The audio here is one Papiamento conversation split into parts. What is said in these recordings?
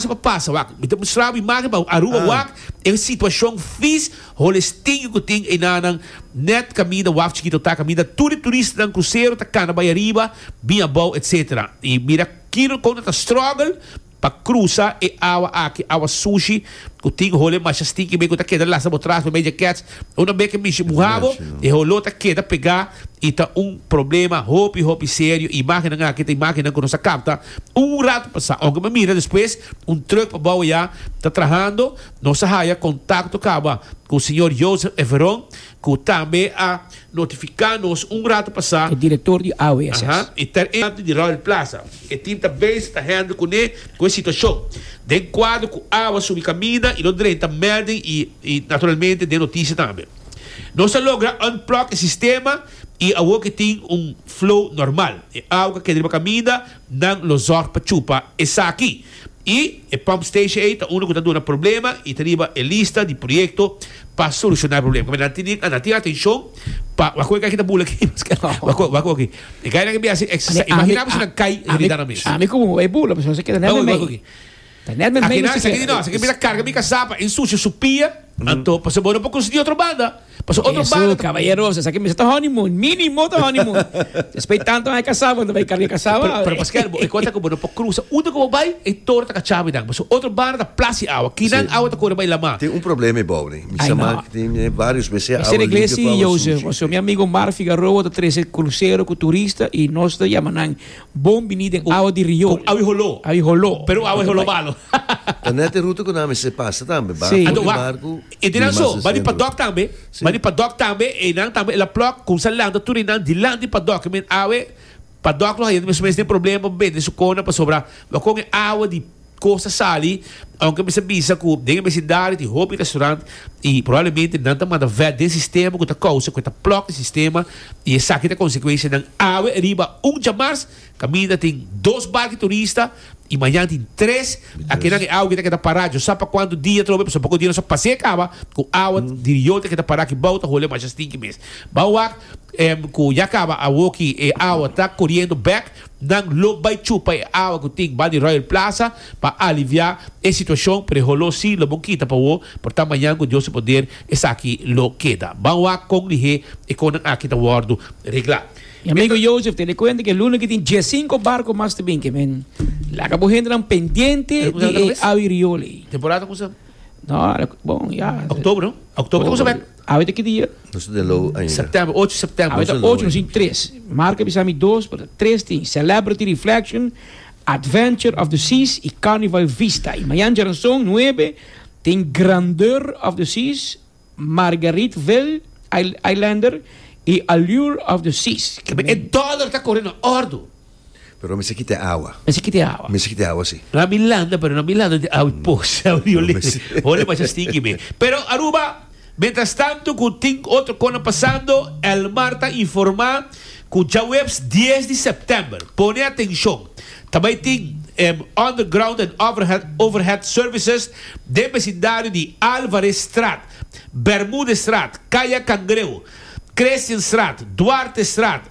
Kasa pa pasa wak. Mi ta mustra bo imagen pa bo. Aruba wak e un situacion fis holestiño cu tin enanan net caminda waf chikito ta caminda tur e turistanan crucero ta cana bay ariba bin abao etc. Y mira kilonan con nan ta struggle pa crusa e awa aki awa sushi cu tin hole masha stinky bay cu ta keda lasa bo traha bay jackets un a bay ke mishi muha bo e holo ta keda pega y ta un problema hopi hopi serio imagennan aki ta imagennan cu nos a capta Un rato pasá, ora ku mi mira despues, un trùk pa bou ayá ta trahando. Nos a haya kontakto kaba ku señor Joseph Everon, ku tambe a notifiká nos un rato pasá. E direktor di AWSS. Aha. E ta e kantu di Royal Plaza. E tim ta bezig ta hèndel kuné ku e situashon. Den kuadro ku awa subi kaminda i lo drenta mèlding i naturalmente den notisia tambe. Nos a logra unplug e sistema. Y awor ke tin un flow normal, e awa ka keda riba kaminda, nan lo zorg pa chupa esaki. Y e pump station ey ta uno ku ta duna problema y ta riba e lista di proyekto pa solushona e problema. Kome nan tin, nan tin atenshon pa wak wak aki ta bula aki, paske wak wak, wak wak aki. E gainan ke biaha hasi exercise, imaginá bo si nan kai realidadnan mes. Ami ku Mumu ey bula, paske nos a keda nen na mei. Aki nan, esaki di nos, esaki mira karga mi kasaba, ensucia su pia, anto pasobra bo no por konsigui otro banda, pasobra otro banda ta. Kabayeroso, esaki mester ta honeymoon, minimo ta honeymoon. Despues di tanto aña kasá bo ta bai karga e kasaba. Pero, pero paskei bo cuenta ku bo no por krusa unda ku bo bai, e toro ta kachá mi nan, pasobra otro banda ta plas di awa, kinan awa ta kore bai lamá. Tin un problema ebou nei, mi sa man tin varios mes e awa limpio ku awa sucio. Mi amigo Omar Figaroa ta trese krusero ku turista i nos ta yama nan. Bon bini den awa di rio. Con awi holó. Awi holó. Pero awa holó malo. Ta net e ruta cu nan a mester pasa tambe. Ba for di barcu y di mas den centro. Ado wak. E di nan so. Ba di padok tambe. Ba di padok tambe. E nan tambe el a plok. Cuminsa lanta tur e nan dilanti padok. E men awe padok lo haye. Nos mes den problema pa bende su cona pasobra lo con e awa di. Cosa sali, aunke mester bisa cu den e besidario tin hopi restaurant y probablemente nan ta manda vet den sistema cu ta causa cu e ta plug e sistema y esaki ta consecuencia nan awe riba un djamars caminda tin dos barki turista y mañan tin tres akenan e awe que ta keda para djo sa pa cuanto dia atrobe pasobra poko dia nos a pase caba cu awa di riol ta keda para aki bao ta hole masha stinky mes bao wak cu ya caba awoki e awa ta coriendo bek Nan lo bai chupa e awa ku tin ban di Royal Plaza pa aliviá e situashon, pero e holó sí lo bon kita pa wó, por ta mañan ku Dios su poder esaki lo keda. Ban wak kon lihé e konan aki ta wòrdu reglá. Mi amigu Joseph tene kuenta ku e luna ke tin diesinko barko mas ta bin ke men. Laga bo hendenan pendiente di e awi riol ei. Temporada ta kuminsa? Bon, ya. Oktobro. Oktobro ta kuminsa bèk. Awe ta ki dia? Nos no tin low ainda. September, ocho September. Awe ta ocho, nos tin tres. Marco a bisa mi dos, pero ta tres tin, Celebrity Reflection, Adventure of the Seas y Carnival Vista. Y mañan djeranson, nuebe, tin Grandeur of the Seas, Margariteville, Islander, y Allure of the Seas. Mi dollar ta corre na ordo. Pero mester kita e awa. Mester kita e awa. Mester kita e awa si. Na Milanda pero na Milanda tin awa pos. Holi masha stinki mi. Pero Aruba mientras tanto cu tin otro cosa pasando Elmar ta informa cu djaweps dies di september pone atencion ta bay tin underground and overhead services den becindario di Alvarezstraat, Bermudestraat, Caya Cangreu, Christianstraat, Duartestraat,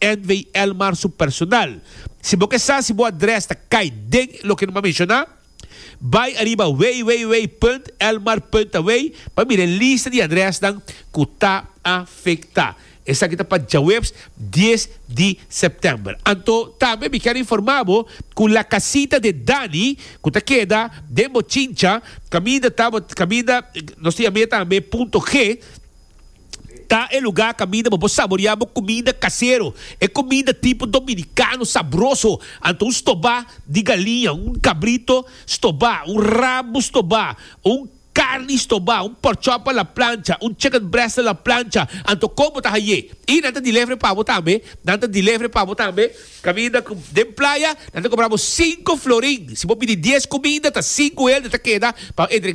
NVL mar su personal. Si bo ke sa si bo adres ta kai den loke no a menshona, bai ariba www.lmar.away pa mira e lista di adresnan ku ta afektá. Esaki ta pa djaweps dies di sèptèmber. Anto tambe mi kèn informá bo ku La Casita de Dani ku ta keda den Bochincha kaminda ta bo kaminda nos ta yam'é tambe Punto G, Ta e lugar caminda pa bo saborea bo comida casero, e comida tipo Dominicano sabroso, anto un stoba di galiña, un cabrito stoba, un rabo stoba, un carni stoba, un pork chop a la plancha, un chicken breast a la plancha, anto con bo ta haye y nan ta delivery pa bo tambe, nan ta delivery pa bo tambe caminda cu den playa nan ta cobra bo cinco florin si bo pidi dies comida ta cinco helde ta keda pa entrega.